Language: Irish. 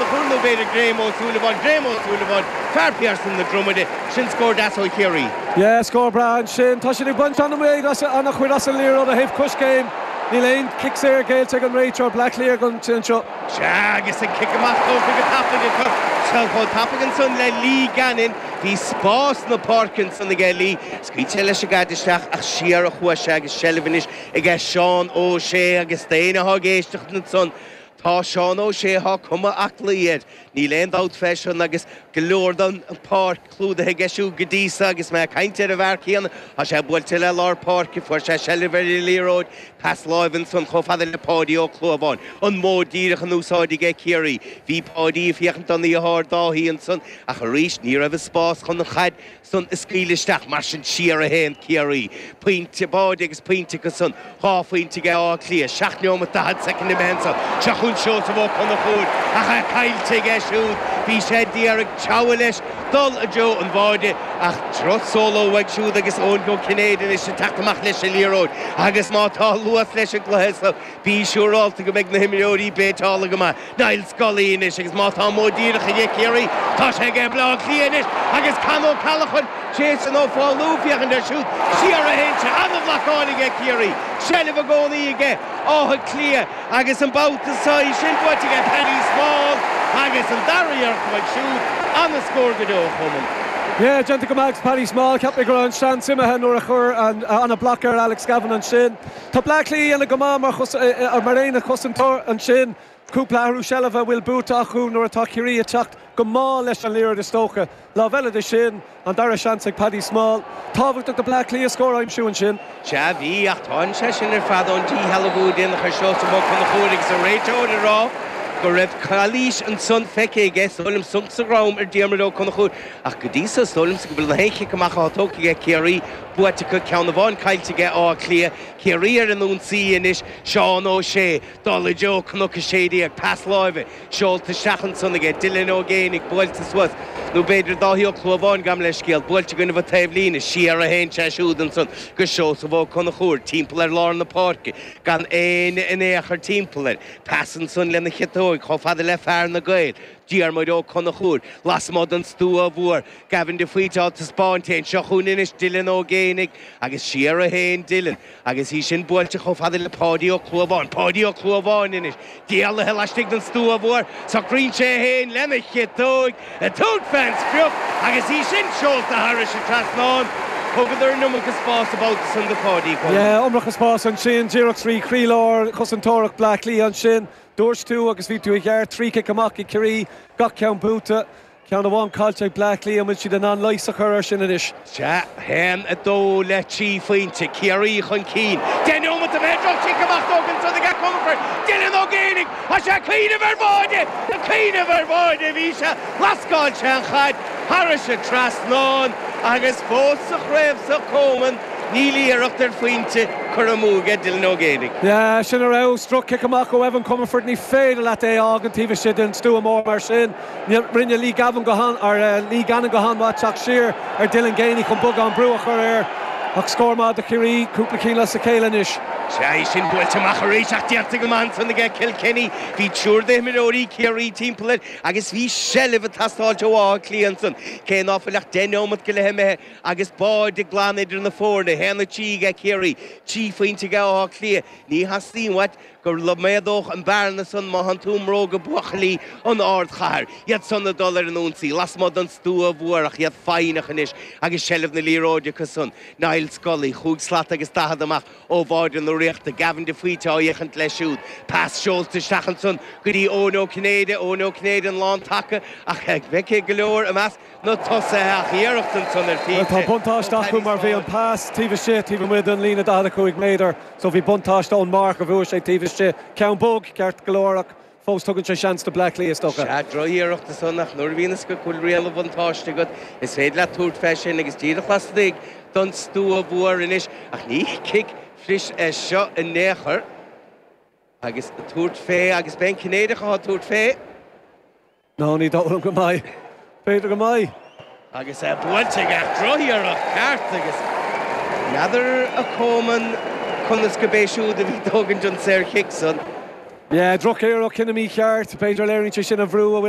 Ba chóir nó b'fhéidir Graham Ó Súilleabháin, Graham Ó Súilleabháin, fear Phiarsaigh na Dromoda, sin scór deas ó Chiarraí. Yeah, scór breá ansin. Tá siad ag baint an-amuigh as, an-chuid as an liathróid ó thaobh coiscéim. Níl aon chic saor géillte ag an réiteoir, Bleá Cliath, ag an tslinn seo. Sea, agus an cic amach tógtha go tapaidh acu. Chan chomh tapaidh ansan le Lee Gannon. Bhí spás na páirce ansan aige Lee. Scaoil sé leis an gcaid isteach ach siar a chuaigh sé agus seilbh anois aige Seán Ó Sé agus d'éinne atá ag éisteacht ansan, Tá Seán Ó Sé tá cuma aclaí air, níl aon dabht fé sin, agus go leor den pháirc clúdaithe aige siúd go dtí so, agus mé ag caint ar an bhfear céanna, tá sé buailte le lár páirce, fuair sé seilbh ar an liathróid, pas láimhe ansan chomh fada le Páidí Ó Clúmháin, an modh díreach in úsáid aige Ciarraí. Bhí Páidí ag féachaint don deartháir Dáithí ansan, ach arís ní raibh an spás chun an chaid, san a scaoileadh isteach. Mar sin, siar a théann Ciarraí, pointe báire agus pointe acu san, dhá phointe ag Áth Cliath, 7 neomat 40 soicind imithe ansan. Seo chughainn Seosamh Ó Conchúir ach é caillte aige siúd. Bhí sé d'iarraidh treabhadh leis dul i dtreo an bháire ach droch solo uaidh siúd agus Eoin Ó Cinnéide anois ag teacht amach leis an liathróid agus má tá luas leis an gcluiche so Bí siúrálta go mbeidh na himreoirí béiteálta go maith, Niall Scully anois, agus má tá modh díreach aige Ciarraí, tá sé aige Bhaile Átha Cliath anois agus Con O'Callaghan, Jason Ó Foghlú, féachaint air siúd, siar a théann sé, an-bhlacáil aige Ciarraí, seilbh i gcónaí aige Áth Cliath agus an babhta so í sin buaite aige Paddy Small agus an dara iarracht uaidh siúd, an-scór go deo a Choman. Yeah, déanta go maith ag Paddy Small, cheap mé go raibh an seans imithe nuair a chuir an an block ar Alex Gavin ansin. Tá Bleá Cliath á dhéanamh go maith mar aonad cosantóirí ansin. Cúpla athrú seilbhe a bhfuil buaite acu nuair atá Ciarraí ag teacht go mall leis an liathróid is dócha. Lámh eile de sin, an dara seans ag Paddy Small. Tábhachtach do Bhleá Cliath an scór a aimsiú ansin. Sea, bhí, ach tagann sé sin ar fad ón díshealbhú a déanadh ar Seosamh Ó Conchúir agus an réiteoir ag rá go raibh calaois ansan feicthe aige. Is dóigh liom sonc sa drom ar Diarmuid Ó Conchúir ach go dtí so is dóigh liomsa go bhfuil na haon chic amach atá tógtha ag Ciarraí buaite acu, ceann amháin caillte aige, Áth Cliath, Ciarraí ar an ionsaí anois, Seán Ó Sé ag dul i dtreo Cnoc 16, pas láimhe, seolta isteach ansan aige, Dylan Ó Géibheannaigh, buailte suas, nó b'fhéidir Dáithí Ó Clúmháin, gabh mo leithscéal, buailte gainimhe taobhlíne, siar a théann sé siúd ansan go Seosamh Ó Conchúir, timpeall ar lár na páirce, gan éinne in aon chor timpeall air, pas ansan lena chiotóig, chomh fada le fear Na Gaeil. Diarmuid Ó Conchúir, lasmuigh den stua mhór, Gavin de Faoite á taispeáint fhéin seo chugainn anois, Dylan Ó Géibheannaigh agus siar a théann Dylan, agus í sin buailte chomh fada le Páidí Ó Clúmháin, Páidí Ó Clúmháin anois, éalaithe laistigh den stua mhór, socraíonn sé fhéin lena chiotóig, ag tabhairt fén sprioc, agus í sin seolta thairis an trasnán. Thugadar an iomarca spáis an babhta san do Pháidí, go. Yeah, iomarca spáis ansin, díreach trí chroílár chosantóireacht Bhleá Cliath ansin. Dúirt tú agus bhí tú i gceart trí chic amach ag Ciarraí, gach ceann buaite, ceann amháin caillte ag Bleá Cliath. An bhfuil siad in ann leigheas a chur air sin anois? Sea, 1, 2 le trí phointe, Ciarraí chun cinn. Deich nóimeat imithe, droch-chic amach tógtha ansan ag Comerford, Dylan Ó Géibheannaigh. Tá sé ag cuimhneamh ar bháide! Ag cuimhneamh ar bháide a bhí sé, lascáil sé an chaid thairis an trasnán agus fós sa chraobh so, Coman. Níl iarracht ar phointe curtha amú ag Dylan Ó Géibheannaigh. Yeah, sin arís droch-chic amach ó Evan Comerford. Ní féidir leat é a fhágaint taobh istigh den stua mór mar sin. Rinne Lee Gavin go han, or eh, Lee Gannon go han-mhaith teacht siar ar Dylan Geaney chun beagán brú a chur air. Ach scór maith do Chiarraí, cúpla cinn as a chéile anois. Sea, í sin buailte amach arís ach déanta go maith ansan aige Kilkenny. Bhí triúr d'imreoirí Chiarraí timpeall air agus bhí seilbh ag teastáilt ó Áth Cliath ansan, cé ná fuil ach deich neomat go leith imithe. Agus báide glan idir na foirne, 1-3 ag Ciarraí, trí phointe ag Áth Cliath, ní theastaíonn uait go méadódh an bhearna san má thánn tú i mbróga buachaillí an ardchathair. Iad san ag dul ar an ionsaí lasmuigh den stua mhór ach iad foighneach anois agus seilbh na liathróide acu san. Niall Scully, chúig slat agus daichead amach ó bháide na Ríochta, Gavin de Faoite á fhéachaint leis siúd, pas seolta isteach ansan go dtí Eoin Ó Cinnéide, Eoin Ó Cinnéide an lán taca ach feicthe go leor i measc na tosaithe ach iarracht ansan ar phointe. Tá buntáiste acu mar bhí an pas taobh istigh taobh amuigh den líne 45 méadar so bhí buntáiste ón marc a bhuaigh sé taobh istigh. Ceann bog, ceart go leor, ach fós tugann sé seans do Bleá Cliath, is dócha. Sea, droch-iarracht ansan ach nuair a bhíonn a fhios agat go bhfuil riail an bhuntáiste agat, is féidir leat tabhairt fé sin agus díreach laistigh don stua mhór anois, ach ní cic fuirist é seo in aon chor. Agus tabhairt fé agus beidh an Cinnéideach ag tabhairt fé. Nó, ní dóigh liom go mbeidh. B'fhéidir go mbeidh. Agus é buailte aige ach droch-iarracht ceart agus n'fheadar a Coman conas go b'é siúd a bhí ag tógaint an saor chic san. Yeah, droch-iarracht, cinneadh mícheart. B'fhéidir léiríonn sé sin an brú a bhfuil